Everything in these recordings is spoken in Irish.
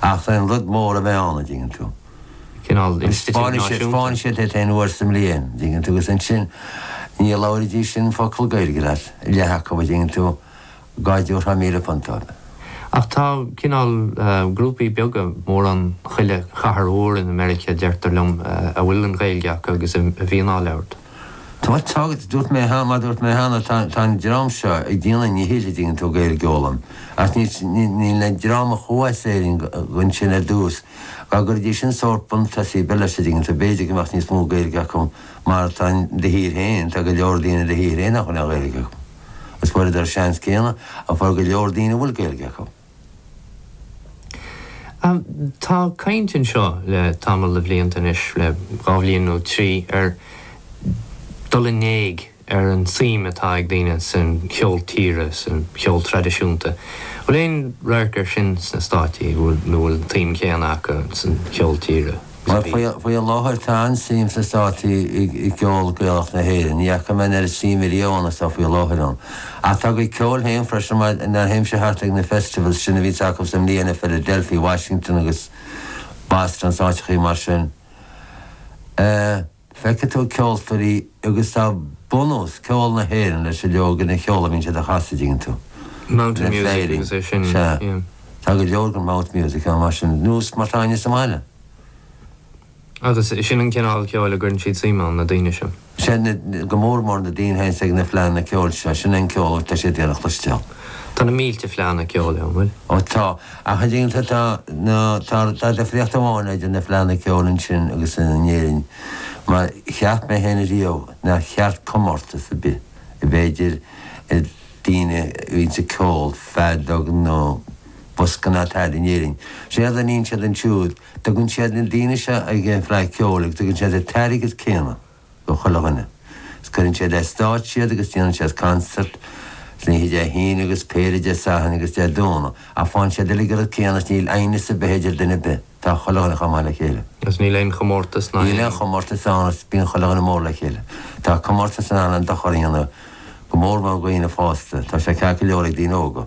Ach tá an rud mór a bheith ann, an dtuigeann tú. Cineál institiúid náisiúnta. Spáineann siad aon uair sa mbliain, an dtuigeann tú, agus ansin ní labhróidís sin focal Gaeilge leat, leath acu, an dtuigeann tú, dhá dtiúrfá míle punt dóibh. Ach tá cineál grúpaí beaga, mórán chuile chathair mhór in America, deirtear liom, a bhfuil an Ghaeilge acu agus a bhíonn á labhairt. Tá tagairt, Dúirt mé cheana, mar a dúirt mé cheana, tá, tá an dream seo ag déanamh a ndíchill, an dtuigeann tú, Gaeilge a fhoghlaim, ach ní, ní, níl an dream a chuaigh as Éirinn ansin ar dtús, dá gcuirfidís sin sórt buntús ar bith leis, an dtuigeann tú, b'fhéidir go mbeadh níos mó Gaeilge acu mar tá in do thír féin, tá go leor daoine in do thír féin nach bhfuil aon Ghaeilge acu. Is fuaireadar an seans céanna a fuair go leor daoine a bhfuil Gaeilge acu. Tá caint anseo le tamall de bhlianta anois, le dhá bhliain nó trí, ar dhul in éag ar an tsuim atá ag daoine san cheol tíre, san cheol traidisiúnta. Bhfuil aon radharc air sin sna Státaí, nó an bhfuil an tsuim chéanna acu san cheol tíre? Faoi láthair tá an-suim sna Státaí i gceol Gaelach na hÉireann. Ní fhaca mé an oiread suime riamh ann is atá faoi láthair ann. Ach tá a gcuid ceoil féin freisin mar nuair a théimse thart ag na festivals sin a bhíonns acu sa mbliain i Philadelphia, Washington agus Boston, is áiteachaí mar sin. Feicfidh tú ceoltóirí agus tá bunús ceol na hÉireann leis an leagan ceoil a bhíonn siad a chasadh, an dtuigeann tú? Mountain Ina music Féirín. agus é sin, Sea. yeah. Tá go leor den mouth music ann mar sin, nós mar atá againn sa mbaile. Agus sin an cineál ceoil a gcuireann siad suim ann, na daoine sin. Sea, na, go mór mór na daoine a théanns ag na fleánna ceoil seo, sin é an ceol atá siad ag iarraidh a chloisteáil. Tá na mílte fleánna ceoil ann, bhfuil? Ó tá. Ach an ding atá nó tá tá difríocht amháin idir na fleánna ceoil ansin agus in Éirinn, mar cheap mé féin riamh nár cheart comórtas ar bith a bheith idir daoine a bhíonns ag ceol, feadóg nó bosca ná tada in Éirinn. Séard a níonn siad ansiúd, tugann siad na daoine seo ag an bhFleadh Ceoil agus tugann siad an t-airgead céanna. do chuile dhuine. Is cuireann siad ar stáitse iad agus déanann siad concert, san oíche Dé hAoine agus péire Dé Sathairn agus Dé Domhnaigh, ach faigheann siad uilig an rud céanna is níl aighneas ar bith idir duine ar bith, tá chuile dhuine chomh maith le chéile. Is níl aon chomórtas níl aon chomórtas ann is bíonn chuile dhuine mór le chéile. Tá comórtas in ann an-dochar a dhéanamh, go mórmór do dhaoine fásta, tá sé ceart go leor ag daoine óga.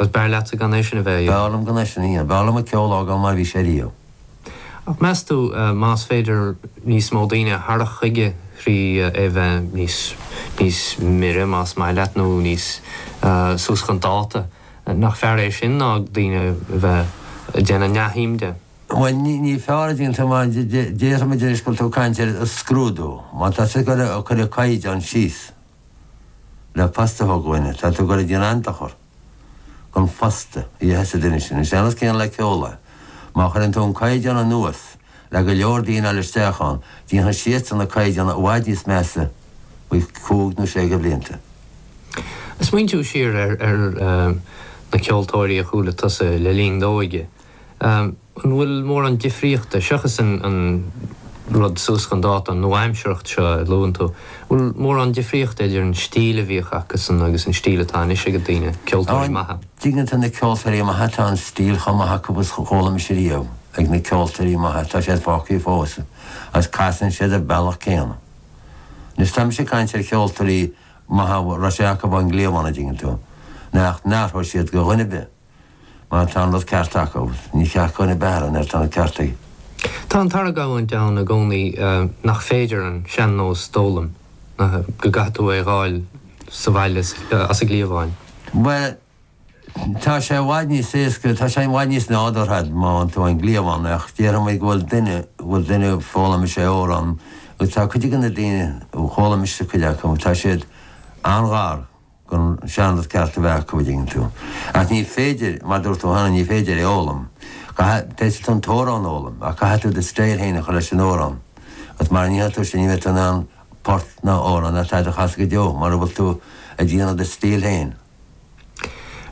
Agus b'fhearr leatsa gan é sin a bheith a B'fhearr dhéanamh? liom gan é sin a dhéanamh. B'fhearr liom an ceol a fhágáil mar a bhí sé riamh. Ach meas tú, más féidir níos mó daoine a tharrac chuige thrí é bheith níos, níos mire más maith leat nó níos, suas chun dáta, nach fearr é sin ná daoine a bheith ag déanamh neamhshuim de? Bhuel, ní, ní fearr, an dtuigeann tú, mar déarfaimid anois go bhfuil tú ag caint ar scrúdú. Má tá tú ag cur, ag cur an caighdeán síos. le post a thógáil duine, tá tú ag goil ag déanamh dochar don phost a dhéanfas an duine sin. Sé an cás céanna le ceol é. Má chuireann tú an caighdeán anuas le go leor daoine a fháil isteach ann, déanfaidh siadsan na caighdeáin i bhfad níos measa faoi chúig nó sé de bhlianta. Smaointiú siar ar na ceoltóirí a chuala tusa le linn d'óige. An bhfuil mórán difríochta, seachas an rud suas chun dáta, an nua-aimsearthacht seo a luann tú, an bhfuil mórán difríochta idir an stíl a bhíodh acusan agus an stíl atá anois ag daoine, ceoltóirí maithe? An dtuigeann tú, na ceoltóirí maithe, tá an stíl chomh maith acu agus a chuala mise riamh ag na ceoltóirí maithe, tá siad fágtha fós, agus casann siad ar an mbealach céanna. Anois, tá mise ag caint ar cheoltóirí maithe a raibh sé acu ón gcliabhán, an dtuigeann tú, nach n-athródh siad do dhuine ar bith. Má tá an rud ceart acu, ní ceart do dhuine ar bith athrú mar tá an ceart acu. Tá an t-argóint ann i gcónaí nach féidir an sean-nós d'fhoghlaim, go gcaithfidh tú é dh'fháil sa bhaile as an gcliabhán. Bhuel, tá sé i bhfad níos éasca, tá sé i bhfad níos nádúrtha má fhaigheann tú ón gcliabhán, ach déarfaimid go bhfuil duine, go bhfuil duine a fhoghlaimíos amhrán, agus tá cuid de na daoine a fhoghlaimíos é, cuid acu, tá siad an-ghar. don seanrud ceart a bheith acu, an dtuigeann tú. Ach ní féidir, mar dúirt tú cheana, ní féidir é fhoghlaim. Caithfidh, féadfaidh tú an t-amhrán a fhoghlaim, ach caithfidh tú do style féin a chur leis an amhrán. Agus mara ndéanfaidh tú sin, ní bheidh tú in ann port ná amhrán ná tada a chasadh go deo, mara bhfuil tú ag déanamh do style féin.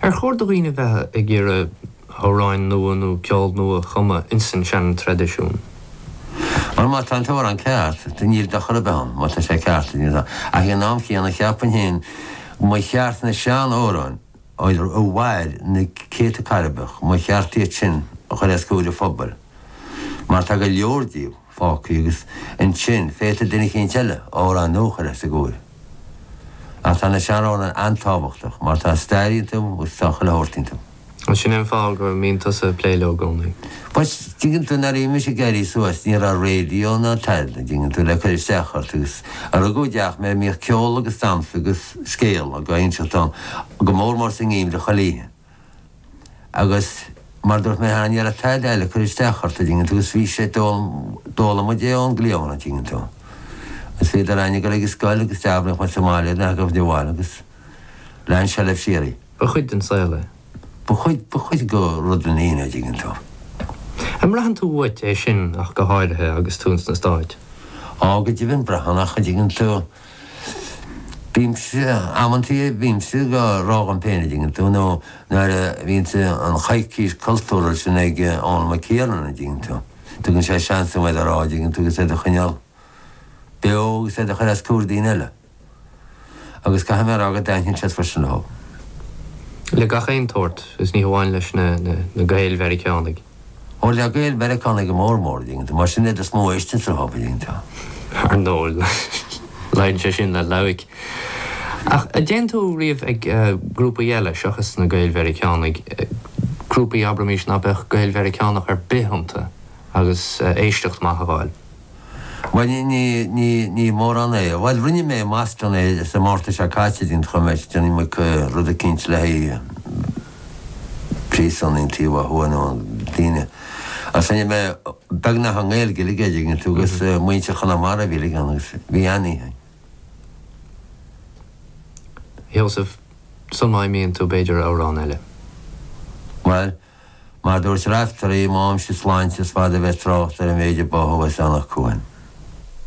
Ar chóir do dhaoine bheith ag iarraidh. amhráin nua nó ceol nua a chumadh ins an seantraidisiún. Mar má tá an t-amhrán ceart, níl dochar ar bith ann, má tá sé ceart. Ach ag an am chéanna, cheapainn féin go mba cheart na sean-amhráin a mhair na céadta cairbreach, mba cheart iad sin a chur os comhair an phobail, mar tá go leor díobh. fágthaí agus ansin féadfaidh duine eicínt eile amhrán nua a chur os a gcomhair. Ach tá na sean-amhráin an-tábhachtach mar tá stair iontu agus tá chuile shórt iontu. Agus sin é an fáth go mbíonn tusa ag plé leo i gcónaí. Bhuel, tuigeann tú, nuair a bhí mise ag éirí suas ní raibh raidió ná tada, tuigeann tú, le cur isteach ort agus rugadh i dteach mé a mbíodh ceol agus damhsa agus scéal á inseacht ann, go mór mór sa ngeimhreadh chuile oíche. Agus mar dúirt mé cheana, ní raibh tada eile ag cur isteach ort, an dtuigeann tú, is bhí sé, d'fhoghlaim muid é ón gcliabhán, an dtuigeann tú. Is bhíodar ann ag dul ag scoil agus d'abraíodh muid sa mbaile iad, nach raibh de bhail, agus lean sé leis síoraí. Ba chuid den saol é. Ba chuid, ba chuid go rud den fhine, an dtuigeann tú. An mbraitheann tú uait é sin ach go háirithe agus tú ins na Stáit? Á, go deimhin, braitheann ach, an dtuigeann tú, Bímse, amantaí, bímse dhá rá dhom péin, a dtuigeann tú, nó nuair a bhíonns an choicís cultúrtha sin ag Eoin Mac Thiarnáin, dtuigeann tú. Tugann sé seans dom iad a rá, dtuigeann tú, agus iad a choinneáil beo agus iad a chur os comhair daoine eile. Agus caithfidh mé a rádh go dtaitníonn siad freisin leo. Le gach aon tsórt, is ní hamháin leis na Gaeil-Mheiriceánaigh. Ó, le Gaeil Mheiriceánaigh go mór mór, a dtuigeann tú, mar is iad is mó a éisteann sa Ghailf, a dtuigeann tú. Ar ndóigh, luíonn sé sin le loighic. Ach an dtéann tú riamh ag grúpaí eile seachas na Gaeil Mheiriceánaigh, grúpaí abraimis ná beadh Gaeil Mheiriceánach ar bith iontu agus éisteacht maith a fháil. Bhuel, ní, ní, ní, ní mórán é. Bhuel, rinne mé i mBoston é, sa Márta seo caite, dtuigeann tú, mé ag déanamh rud eicínt le haghaidh príosúin an taobh ó thuaidh, na daoine. Agus rinne mé beagnach i nGaeilge uilig é, dtuigeann tú, agus muintir Chonamara a bhí uilig ann agus bhí an-oíche ann. Sheosaimh, Sul má imíonn tú b'fhéidir amhrán eile. Bhuel, Mar a dúirt Raiftearaí, má fhaighimse sláinte is fada a bheidh trácht ar an méid a báthadh as Eanach Cuain.